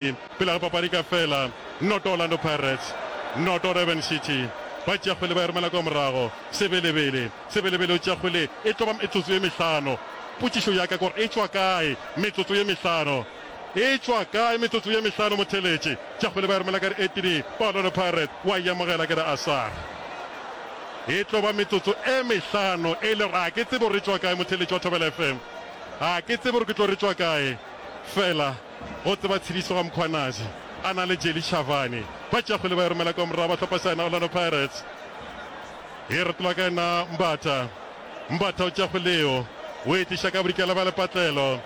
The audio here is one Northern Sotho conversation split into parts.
Pele ga papadi ka fela, noto Orlando Pirates, noto Durban City. Ba tšea kgwele ba e romela kwa morago. Sebelebele, Sebelebele o tšea kgwele e tlo ba metsotso ye mehlano. Potšišo ya ka ke gore e tšwa kae metsotso ye mehlano? E tšwa kae metsotso ye mehlano? Motheletši tša kgwele ba e romela ka dietiri ba Orlando Pirates, wa e amogela ke re Asar. E tlo ba metsotso e mehlano e le gore a ke tsebe gore e tšwa kae, motheletši wa Thobela FM. A ke tsebe gore ke tlo re e tšwa kae fela. Go tseba tshediso ga Mkhwanazi a na le Jelly Chavani ba tšeago le ba e romela kwa morago ba hlopha sa yena Orlando Pirates. E retolwa ka yena Mbatha. Mbatha o tšeago leo o e tliša ka bodikela bja lepatlelo.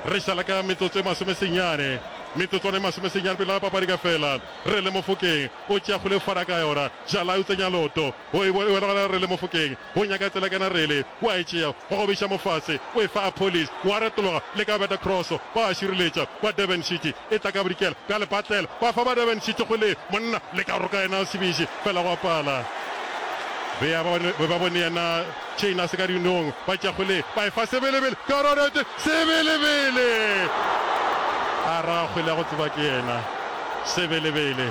Re šala ka metsotso e masome senyane, metsotswana e masome senyane pele ga papadi ka fela. Relly Mofokeng o tšeago leo fara ka yona, Jalai o tsenya loto go e wela gona Relly Mofokeng. O nyaka tsela ka narele, o a e tšea, wa gobiša mo fase, o e fa Apollis, wa retologa le ka beta kroso, ba a šireletša, ba Durban City e tla ka bodikela, ka lepatlelo, ba fa ba Durban City go Lee, monna le ka roka yena a se biše, fela gwa pala. Be ya ba, be ba bone yena Chain a se ka dinong, ba tšea go Lee, ba e fa Sebelebele, ka rorete, Sebelebele! A ra a kgole a go tseba ke yena, Sebelebele,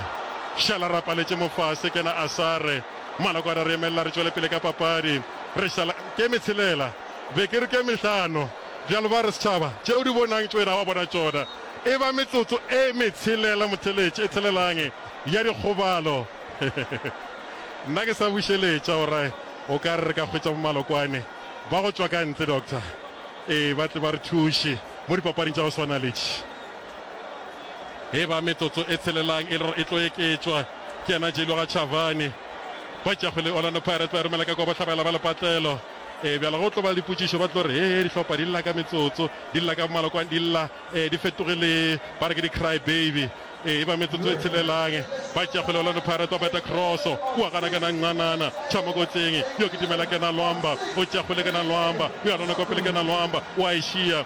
šala ra paletše mo fase, kena Asare, Maloko a re a re emelela re tšwele pele ka papadi. Re šala ke metshelela, be ke re ke mehlano. Bjalo ba re setšhaba, tše o di bonang tšwena wa bona tšona. E ba metsotso e metshelela motheletše e thelelang ya dikgobalo. Nna ke sa bušeletša o ra o ka re re ka hwetša bo Malokwane ba go tšwa ka ntle, Doctor, ee ba tle ba re thuše mo dipapading tša go swana le tše. E ba metsotso e tshelelang e le gore e tlo eketšwa ke yena Jailoga Chavani. Ba tšago le Orlando Pirates ba romela ka kwa bohlabela ba lepatlelo. E bjalo go tlo ba le dipotšišo ba tlo re hee dihlopha di lla ka metsotso, di lla ka malokwane, di lla e di fetoge le ba re ke di cry baby. E ba metsotso e tshelelang ba tšago le Orlando Pirates ba beta cross kua gana kena Ncanana Chamokotseng yo ke Tumela Kena Lwamba o tšago le Kena Lwamba o ya lona kwa pele Kena Lwamba wa e šia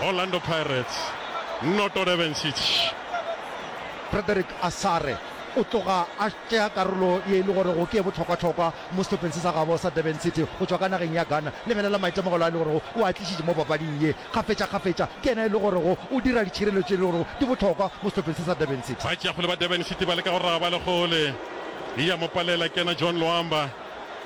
Orlando Pirates noto Durban City. Frederick Asare o tloga a tšea karolo ye e le gorego ke ye bohlokwahlokwa mo sehlopheng se sa gabo sa Durban City go tšwa ka nageng ya Ghana. Lebelela maitemogelo a e le gorego o a tlišitše mo papading ye. Kgafetšakgafetša ke yena e le gorego o dira ditšhireletšo tše e le gorego di bohlokwa mo sehlopheng se sa Durban City. Batšeakgole ba Durban City ba leka go raba le gole e a mo palela kena John Loamba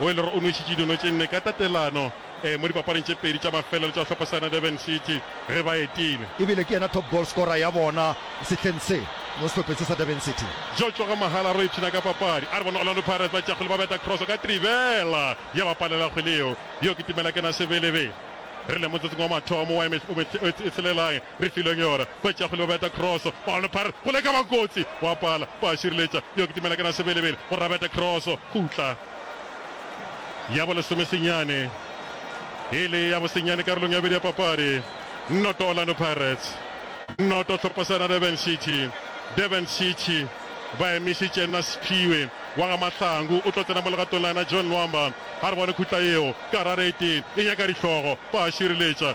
o e le gore o nwešitše dino tše nne ka tatelano. mo dipapading tše pedi tša mafelelo tša sehlopha sa yona Durban City ge ba etile. E bile ke yena top goal scorer ya bona sehleng se mo sehlopheng se sa Durban City. Joe Tsoga Mahala re ipshina ka papadi a re bona Orlando Pirates ba tšea kgwele ba beta cross ka trivela ya ba palela kgwele yeo. Yo ke Timelakena Sebelebele. Re le motsotsong wa mathomo wa e tshelelae Re filwe ke yona. Ba tšea kgole ba beta kroso. Ball Pirates kgole ka ba kotsi. Wa pala. Ba šireletša. Yo kitimela ke Rasebelebele. O rabeta kroso. Khutla. Ya bo lesome senyane. E le ya bosenyane karolong ya bobedi ya papadi. Noto Orlando Pirates. Noto Tlhopasana Durban City. Durban City ba emišitše nna Sphiwe wa ga Mahlangu. O tlo tsena mo legatong la yena John Nwamba. Ga re bone khutla yeo. Karate e nyaka dihlogo. Ba šireletša.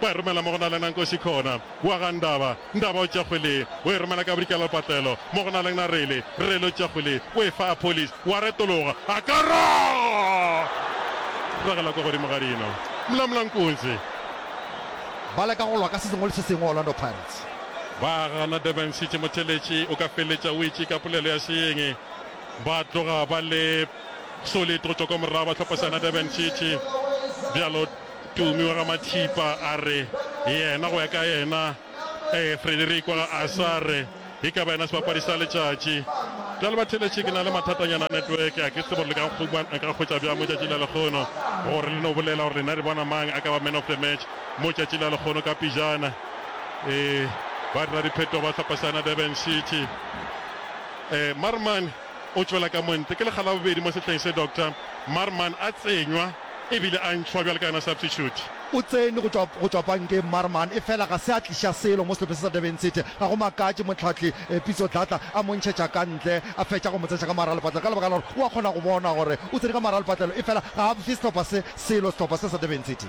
ba e romela mo go na le na Nkosi Khona wa ga Ndaba, Ndaba o tšea kgwele o e romela ka bodikela lepatlelo mo go na le na Rele, Rele o tšea kgwele o e fa Apollis wa retologa a ka ra ragela kwa godimo ga dino Mla Mla Nkunzi. Ba leka go lwa ka se sengwe le se sengwe Orlando Pirates. Ba gana Durban City motheletši o ka feleletša o itše ka polelo ya seeng ba tloga ba le solid go tšwa kwa morago ba hlopha sa yona Durban City bjalo Tumi wa ga Mathipa a re yena go ya ka yena ee Frederick wa ga Asa a re e ka ba yena sebapadi sa letšatši. Bjale ba theletše ke na le mathatanyana a network a ke tsebe gore le ka nkhuma nka hwetša bjang mo tšatši la lekgono gore le no bolela gore lena le bona mang a ka ba man of the match mo tšatši la lekgono ka pijana. Ee ba dira diphetho ba hlapasana Durban City. Ee Marman o tšwela ka montle ke lekga la bobedi mo sehleng se Doctor Marman a tsenywa. E bile a ntšhwa bjalo ka yona substitute. O tsene go tšwa go tšwa pankeng Marman efela ga se a tliša selo mo sehlopeng se sa Durban City. Ga go makatše mohlahli Pitso Dladla a mo ntšhetša ka ntle a fetša go mo tseša ka mogara lepatlelo ka lebaka la gore o a kgona go bona gore o tsene ka mogara lepatlelo efela ga a fe sehlopha se selo sehlopha se sa Durban City.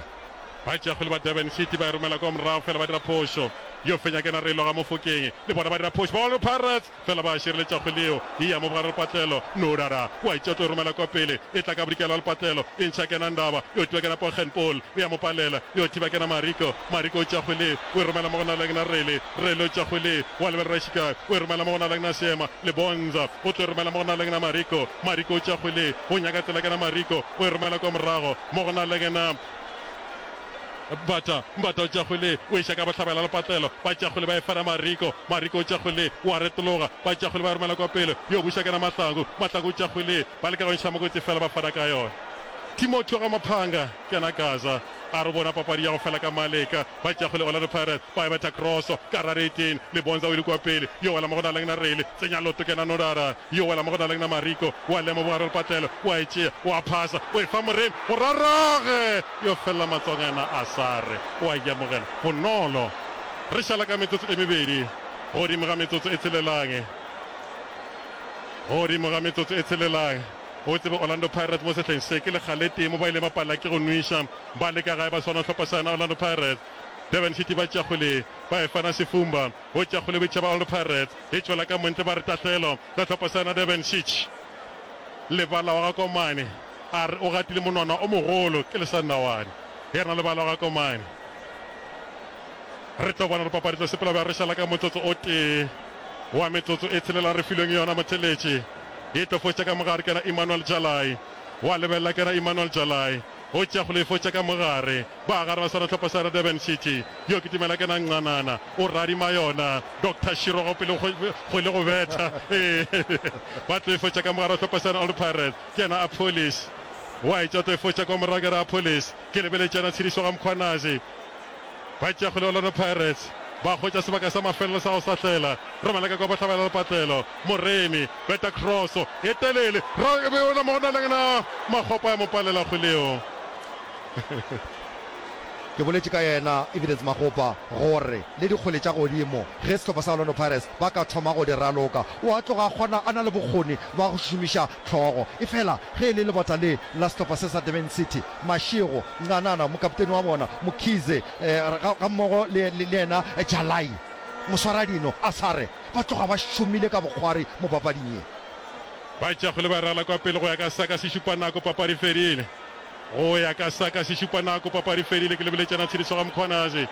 Batšeakgwele ba Durban City ba e romela kwa morago fela ba dira phošo. Yo fenya ke ena Rello Gamofokeng le bona ba dira phošo. Ball Pirates! Fela ba šireletša kgwele yeo, e ya mo bogare lepatlelo. No rara! Kua e tšea tlo e romela kwa pele, e tla ka bodikela lepatlelo, e ntšha kena Ndaba, yo thiba kena Pochen Paul, e ya mo palela, yo thiba kena Mariko, Mariko o tšea kgwele, o e romela mo go Nalagna Rele, Rele o tšea kgwele, o a lebelela Shikai, o e romela mo go Nalagna Seema, Lebonza o tlo e romela mo go Nalagna Mariko, Mariko o tšea kgwele, o nyaka tsela kena Mariko, o e romela kwa morago mo go Nalagna. Mbata, Mbata o tšwa kgole, o eša ka bohlabela le patlelo, ba tšwa kgole ba e fera Mariko, Mariko o tšwa kgole, o a retologa, ba tšwa kgole ba e romela kwa pele, yo buša ke na Mahlangu, Mahlangu o tšwa kgole, ba leka go ntšha mokoti fela ba fera ka yona. Timothy ga Maphanga, ke na Gaza, a re o bona papadi ya go fela ka maleka, ba tšwa kgole Orlando Pirates ba e betha kroso ka rareteng, Lebonza o ile kwa pele, yo wela mo go na leng na Rele, tsenya loto ke na Nodara, yo wela mo go na leng na Mariko, o a lema bogare le patlelo, o a e tšea, o a phasa, o e fa Moremi, go rarage! Yo fela matswakana a sa re o a yamogela bonolo. Re šala ka metsotso e mebedi godimo ga metsotso e tshelellang. Godimo ga metsotso e tshelellang. O tsebe Orlando Pirates mo sehleng se, ke lekgaletee mo ba ileng ba palla ke go nwiša ba le ka gae ba swana go hlopha sa yona Orlando Pirates. Durban City ba tšakgole ba e fana sefumba. Go tšakgole boitšhaba Orlando Pirates e tšwela ka montle ba re tahlelo ka hlopha sa yona Durban City. Lebala wa ga Komane. A re o gatile monwana o mogolo ke lesandawane ge re na le bana ga ko mane. Re tlo bona dipapadi tlo sepela ba re šala ka motsotso o tee wa metsotso e tshelela re filweng yona motheletše. E tlo fotša ka mogare ke yena Emmanuel Jalai. Wa lebelela ke yena Emmanuel Jalai o tšea kgolo e fotša ka mogare. Ba gare ba seretlhopha sa Durban City yo ke Tumela ke yena Nqanana o radima yona Doctor Shirogo pele kgwele go betha. Ee ba tlo e fotša ka mogare wa hlopha sa yona Old Pirates. Ke yena Apollis. Wa e tšata e fo tša kwa morago ke re, Apollis, ke lebeletše yena tshedišo ga Mkhwanazi. Ba tšea kgole Orlando Pirates. Ba hwetša sebaka sa mafelelo sa go sahlela. Romela ka kwa bohlabela le patlelo. Moremi, beta kroso e telele. Ra e beola mo go na leng na. Makgopa ya mo palela kgoleo. Ke boletše ka yena Evidence Makgopa gore le dikgole tša godimo ge sehlopha sa Orlando Pirates ba ka thoma go di raloka. O a tloga a kgona a na le bokgoni bwa go šomiša hlogo. Efela ge e le lebota le la sehlopha se sa Durban City, Mashego, Ncanana, mokapteni wa bona, Mkhize, ga, gammogo le, le, le yena Jalai, moswaradino, a sa re, ba tloga ba šomile ka bokgwari mo papading ye. Ba tšakgole ba rala kwa pele go ya ka saka se šupa nako, papadi e fedile. Go ya ka sa ka sešupanako, papadi e fedile ke lebeletšana tshediso ga Mkhwanazi.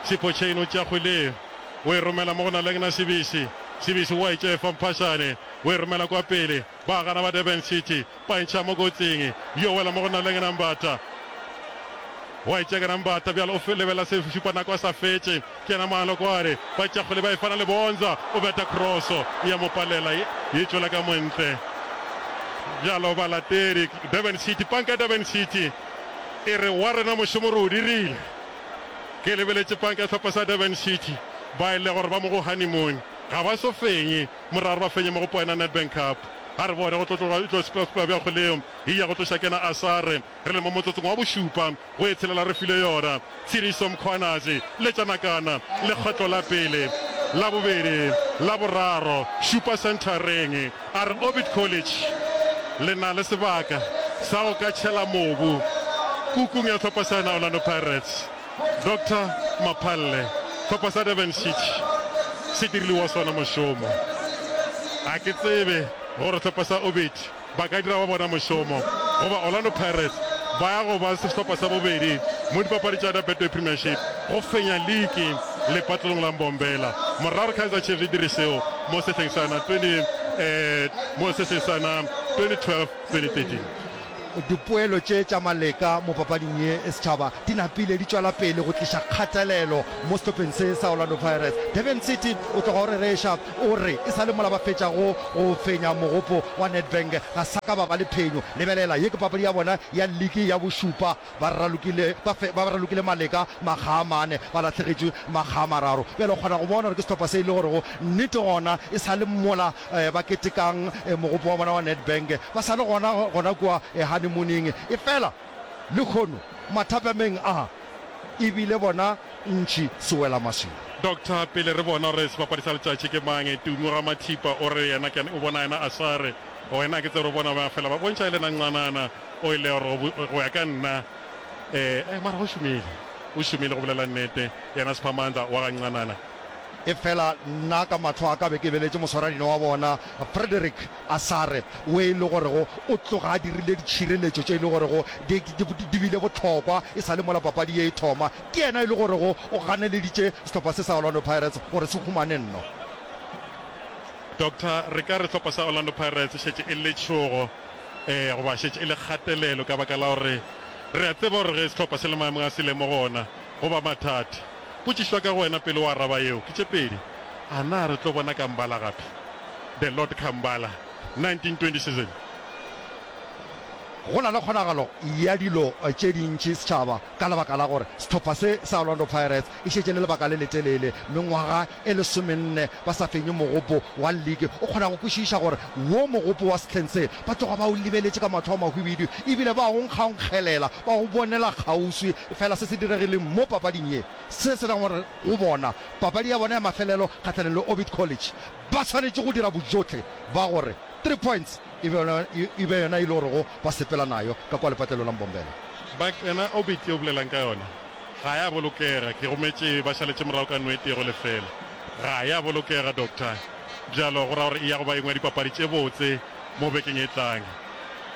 Sipho Chain o tšea kgwele ye, o e romela mo go Nalengna Sibisi. Sibisi o a e tšea e fa Mphashane, o e romela kwa pele. Ba a gana ba Durban City, ba e ntšha mo kotsing, yo wela mo go Nalengna Mbata. O a e tšea ka na Mbata, bjale o lebelela sešupanako a sa fetše. Kena moano kware ba tšakgole ba efana le Bonza, o beta kroso ya mo palela ye tšwela ka montle. Bjalo balatedi Durban City, panka ya Durban City e re wa rena mošomo re o dirile. Ke lebeletše panka ya sehlopha sa Durban City ba e le gore ba mo go honeymoon, ga ba eso fenye moraro ba fenye mo go poena Nedbank Cup. A re bone go tlo tloga e tlo splaspoa bja kgoleo e ya go tloša Kena Asare. Re le mo motsotsong wa bošupa go e tshelela re filwe yona. Tshiriso Mkhwanazi, Letša Nakana, Lekgetlo la pele, la bobedi, la boraro, šupa senthareng. A re Orbit College le na le sebaka sa go ka tšhela mobu kukung ya hlopha sa yona Orlando Pirates. Doctor Maphalle, Hlopha sa Durban City se dirile wa sona mošomo. A ke tsebe gore hlopha sa Orbit ba ka dira wa bona mošomo go ba Orlando Pirates ba ya go ba sehlopha sa bobedi mo dipapadi tša Ada Betway Premiership go fenya liki lepatlelong la Mbombela morago re Kaizer Chiefs e dire seo mo sehleng sa na 20 um mo sehleng sa na 2012-2013. Dipoelo tše tša Maleka mo papading ye e setšhaba di napile di tšwela pele go tliša kgatelelo mo sehlopheng se sa Orlando Pirates. Durban City o tloga o rereša O re, E sa le mola ba fetša go go fenya mogopo wa Nedbank, ga sa ka ba ba le phenyo. Lebelela, ye ke papadi ya bona ya liki ya bošupa. Ba ralokile, ba fe, ba ralokile maleka makga a mane, ba lahlegetšwe makga a mararo. Bjale o kgona go bona gore ke sehlopha se e le gorego nnete gona e sa le mola ba ketekang mogopo wa bona wa Nedbank. Ba sa le gona, gona kua honeymoon-ing. Efela. Lekhono mathapameng a, e bile bona ntši sewelamašwi. Doctor, Pele re bona gore sebapadi sa letšatši ke mang, Tumi Ramathipa o re yena ke o bona yena a sa re go wena, ke tsebe re bona ba fela ba bontšha e le nancanana o e le gore go ya ka nna eh, mara o šomile, o šomile go bolela nnete yena Siphamandla wa gancanana. Efela nna ka mahlo a ka be ke beletše moswaradino wa bona Frederick A sa re, wo e le gorego o tloga a dirile ditšhireletšo tše e le gorego di, di, di bile bohlokwa e sa le mola papadi ye e thoma. Ke yena e le gorego o ganeleditše sehlopha se sa Orlando Pirates gore se humane nno. Doctor, re ka re sehlopha sa Orlando Pirates e šetše e letšhogo, ee, goba šetše e le kgatelelo ka baka la gore re a tseba gore ge sehlopha se le maemong a se le mo go ona go ba mathata. Potšišwa ka go wena pele o araba yeo ke tše pedi, A na re tlo bona Kambala gape? The Lord Kambala, 1927. Go na le kgonagalo ya dilo tše dintši setšhaba ka lebaka la gore sehlopha se sa Orlando Pirates e šetše le lebaka le letelele mengwaga e lesomenne ba sa fenye mogopo wa leke, o kgona go kwešiša gore wo mogopo wa sehleng se ba tloga ba o lebeletše ka mahlo a mahwibidu e bile ba o nkgaonkgelela, ba o bonela kgauswi. Efela se se diregileng mo papading ye se se ra gore go bona papadi ya bona ya mafelelo kgahlanong le Orbit College ba swanetše go dira bojotlhe ba gore three points e be yona e be yona e le gorego ba sepela nayo ka kwa lepatlelong la Mbombela. Back yona Orbit ye o bolelang ka yona? Ga ya bolokega, ke rometše ba šaletše morago ka no e tee go lefela. Ga ya bolokega, doctor. Bjalo go ra gore e ya go ba engwe ya dipapadi tše botse mo bekeng e tlang.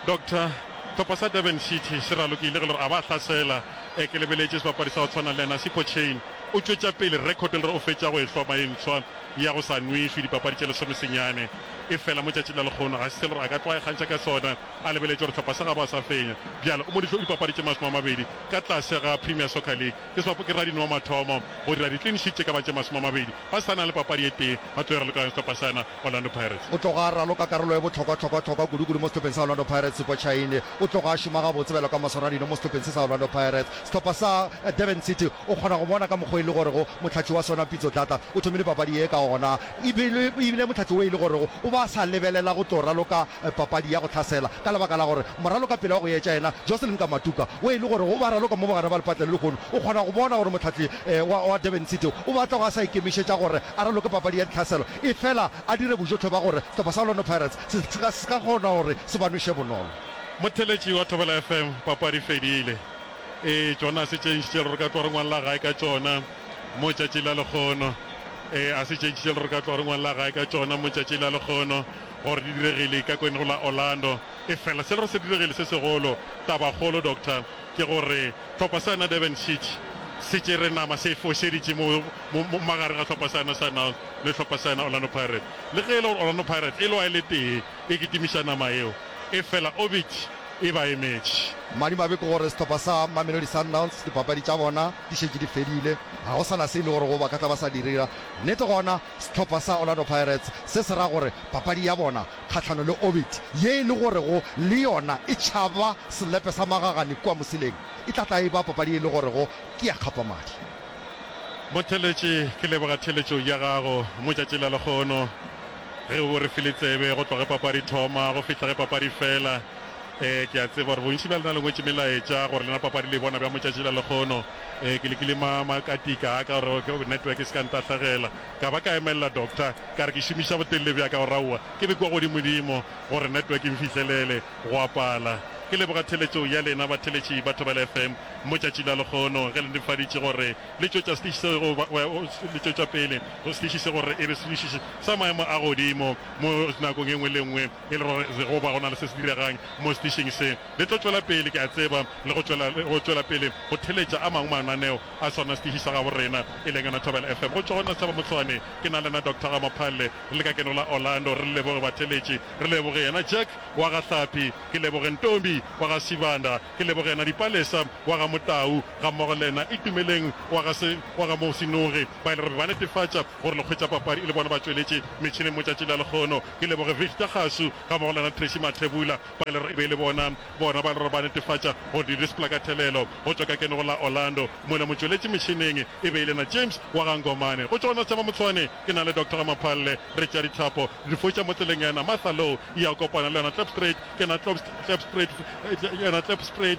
Doctor, Tlhopha sa Durban City se ralokile ge le gore a ba hlasela, e ke lebeletše sebapadi sa go tshwana le yena Sipho Chaine o tšwetša pele record le re o fetša go e hloma e ntshwa ya go sa nwešwe dipapadi tše lesomesenyane e fela mo tšatšing la lekgono ga se selo gore a ka tlo a ikgantšha ka sona. A lebeletše gore sehlopha sa gabo a sa fenya. Bjale o mo dihlo dipapadi tše masome a mabedi ka tlase ga Premier Soccer League. Ke sebapo ke radinwa mathomo go dira di-clean sheet tše ka ba tše masome a mabedi ba sa na le papadi e tee ba tloge raloka sehlopha sa yena Orlando Pirates. O tloga a raloka karolo e bohlokwa-hlokwa-hlokwa kudu-kudu mo sehlopheng sa Orlando Pirates. Sepo Chaine o tloga a šoma gabotse bjalo ka mosoradinwa mo sehlopheng se sa Orlando Pirates. Sehlopha sa Durban City o kgona go bona ka mokgwa e le gorego mohlatši wa sona Pitso Dladla o thomile papadi ye ka gona. E be e bile mohlatse wo e le gorego o ba sa lebelela go tlo raloka papadi ya go hlasela ka lebaka la gore moraloka pele wa go etša yena Jocelyn Kamatuka wo e le gorego o ba raloka mo bogare ba lepatle le lehono o kgona go bona gore mohlahli wa Durban City o batlago a sa ikemišetša gore a raloke papadi ya ditlhaselo efela a dire bojotlhe ba gore sehlopha sa Orlando Pirates se ska kgona gore se ba nweše bonolo. Motheletši wa Thobela FM, Papadi e fedile. Ee, tšona se tšentši tše re ka tlo re ngwalla gae ka tšona. mo tšatši la lekgono. Ee, a se tše ntši tše le re ka tloga re ngwalla gae ka tšona mo tšatši la lekgono, gore di diregile ka kweneng la Orlando. Efela se le re se diregile se segolo, tabakgolo, Doctor, ke gore hlopha sa na Durban City se tšere nama, se e fošeditše mo, mo, mo magareng ga hlopha sa na Sundowns le hlopha sa na Orlando Pirates. Le ge e le gore Orlando Pirates e lwa e le tee e kitimiša nama yeo, efela Orbit e ba emetše. Madimabe ke gore sehlopha sa Mamelodi Sundowns dipapadi tša bona, Di šetše di fedile, ga go sa na se e lego gore go ba ka tla ba sa di dira. Nnete gona, sehlopha sa Orlando Pirates se se ra gore papadi ya bona kgahlano le Orbit, ye e le gorego le yona e tšhaba selepe sa magagane kua Mosileng, e tla tla e ba papadi ye e le gorego ke ya kgapamadi. Motheeletši, ke leboga theeletšo ya gago. Motšatši la lekgono, ge o bo re file tsebe go tloga ge papadi thoma go fihla ge papadi fela, Ee, ke a tseba gore bontši bja lena le ngwetše melaetša gore lena papadi le e bona bjang motšatši la lekgono. Ee, ke lekile ma, makatika a ka gore network e se ka ntahlegela. Ka ba ka emelela doctor, ka re ke šomiša botelele bja ka gore aowa, ke be kua godimodimo gore network e mfihlelele. Gwa pala. Ke leboga theeletšo ya lena batheeletši ba Thobela FM motšatši la lekgono ge le netefaditše gore le tšwetša setiši se go ba, le tšwetša pele setiši se gore e be setiši sa maemo a godimo mo nakong e nngwe le e nngwe. e le gore Jehofa go na le se se diregang mo setišing se. Le tlo tšwela pele, ke a tseba, le go tšwela, le go tšwela pele go theletša a mangwe mananeo a sona setiši sa gabo rena, e leng yona Thobela FM. Go tšwa go nna Sethaba Motshwane, ke na le yena Doctor Ramaphalle, re le ka keno la Orlando, re le leboge batheletši, re leboge yena Jack wa ga Hlapi, ke leboge Ntombi wa ga Sibanda, ke leboge yena Dipalesa wa ga Motau, gammogo le yena Itumeleng wa ga se, wa ga Mosinoge, ba e le gore ba netefatša gore le hwetša papadi e le bona ba tšweletše metšhineng motšatši la lekgono. Ke leboge Victor Kgasu gammogo le yena Tracey Mathebula ba le re e be e le bona bona ba le re ba netefatša gore di display ka thelelo go tšwa ka kenego la Orlando. Mola motšweletši metšhineng e be e le yena James wa ga Ngomane. Go tšwa go Nasthemba Motshwane ke na le Doctor Ramaphalle re tšea dithapo re di foša mo tseleng ya yena Martha Low e ya kopana le yona Klipstrate ke yena Klopst Klipstrate ke yena Klipstrate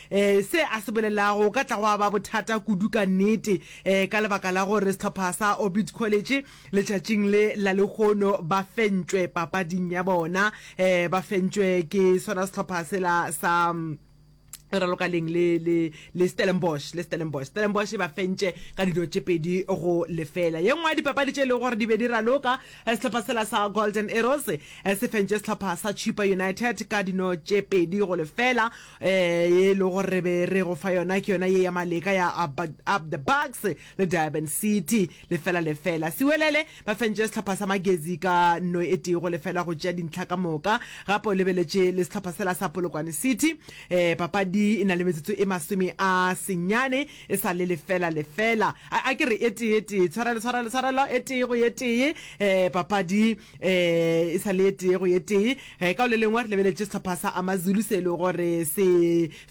Se a se bolelago go ka tla gwa ba bothata kudu ka nnete ka lebaka la gore sehlopha sa Orbit College letšatšing le la lehono ba fentšwe papading ya bona, ba fentšwe ke sona sehlopha sela sa e raloka leng le le le Stellenbosch le Stellenbosch Stellenbosch ba fentše ka dilo tše pedi go lefela ye nngwe ya dipapadi tše e lego gore di be di raloka eh, sehlopha sela sa Golden Arrows eh, se fentše sehlopha sa Chippa United ka dino tše pedi go lefela Ee, ye e lego re be re go fa yona ke yona ye ya maleka ya Up, Up the Bucks le Durban City. Lefela lefela. Sewelele ba fentše sehlopha sa Magezi ka nno e tee go lefela go tšea dintlha ka moka. Gape o lebeletše le sehlopha sela sa Polokwane City. Ee, papadi e na le metsotso e masome a senyane e sa le lefela lefela. A, a ke re e tee, e tee. Tshwarelo, tshwarelo, tshwarelo. E tee go e tee. Ee, papadi um e sa le ye tee go ye tee um ka o le lengwe re lebeletše sehlopha sa amazulu se e le gore se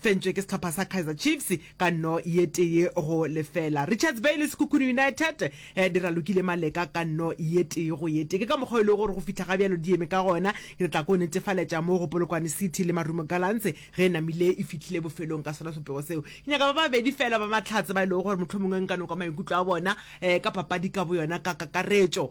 fentšwe ke sehlopha sa kaizer chiefs ka nno ye tee go lefela richards bay le sekhukhune united um di ralokile maleka ka nno ye tee go ye tee ke ka mokgwa e lego gore go fitlha ga bjalo di eme ka gona ke re tla ko netefaletša mo go polokwane city le marumo galantse ge e namile e fitlhile bofelong ka sona sopego seo ke nyaka ba babedi fela ba mahlatse ba e lego gore motlho mongwe nka noka maikutlo a bona um ka papadi ka boyona ka kakaretšo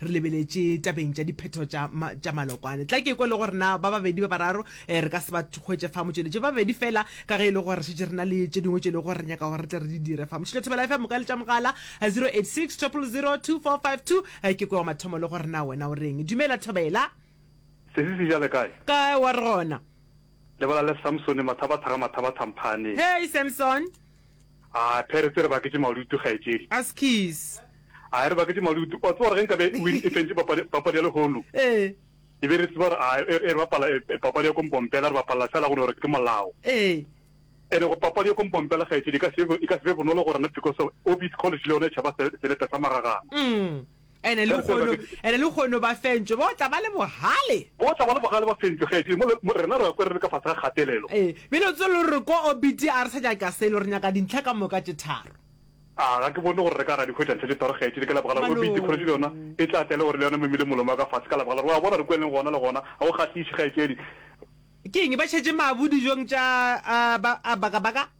re lebeletše tabeng tša diphetho tša ma, tša malokwane tla ke kwe le gore na ba babedi ba bararo eh, re ka se ba hwetše fa motšweletše ba babedi fela ka ge e le gore šetse re na le tše dingwe tše e le gore re nyaka gore re tle re di dire fa motšhile thobela fa moka le tša mogala 086 0002452 ke kwe wa mathomo le gore na wena o reng dumela thobela sesi se jale kae kae wa re gona lebala le samsone mathabathaga mathabathang phane hei samson A Phere tse re baketše malutu kgaetšedi. Askies. A e re baketše malutu. O a tseba gore ge nkabe Win e fentše papadi, papadi ya lehono, Ee. e be re tseba gore a e re bapala e, e papadi ya kompompela, re bapalla fela go no gore ke molao. Ee. Ene go papadi ya kompompela kgaetšedi e ka se, e ka se be bonolo go rena because of Orbit College le yona e tšhaba se, selepe sa magagana. Umm. Ene Ge re sa lehono, bjale. ene lehono ba fentšwe, ba tla ba le bohale. Ba tla ba le bohale, ba fentšwe kgaetšedi, mo le, mo rena re a kwa re le ka fase ga kgatelelo. Ee, bjale o tsebe le gore re kwa obiti, a re sa nyaka selo, re nyaka dintlha ka moka tše tharo. A ga ke bone gore re ka ra di hwetša ntlha tše tharo kgaetšedi, ka lebaka la gore obiti kgoretšo le yona e tla tla e le gore le yona e memile molomo wa ka fase, ka lebaka la gore, wa bona, re kwa e leng gona le gona, ga go kgahliše kgaetšedi. Ke eng? Ba šetše mabu dijong tša, a, ba, a baka-baka?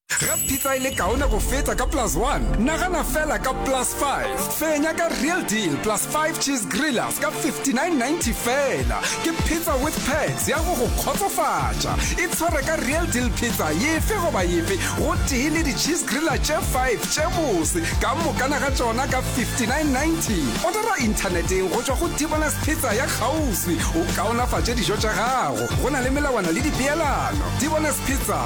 ga pizza e le kaone go feta ka plus one nagana fela ka plus five fenya ka real deal plus five cheese grillers ka 5990 fela ke pizza with pags ya go go kgotsofatša e tshwere ka real deal pizza yefe goba yefe go tee le di-cheese griller tše five tše bose ka mokana ga tšona ka 5990 odara inthaneteng go tšwa go tibolas pizza ya kgauswi o kaonafatše dijo tša gago go na le melawana le dipeelano tibolas pizza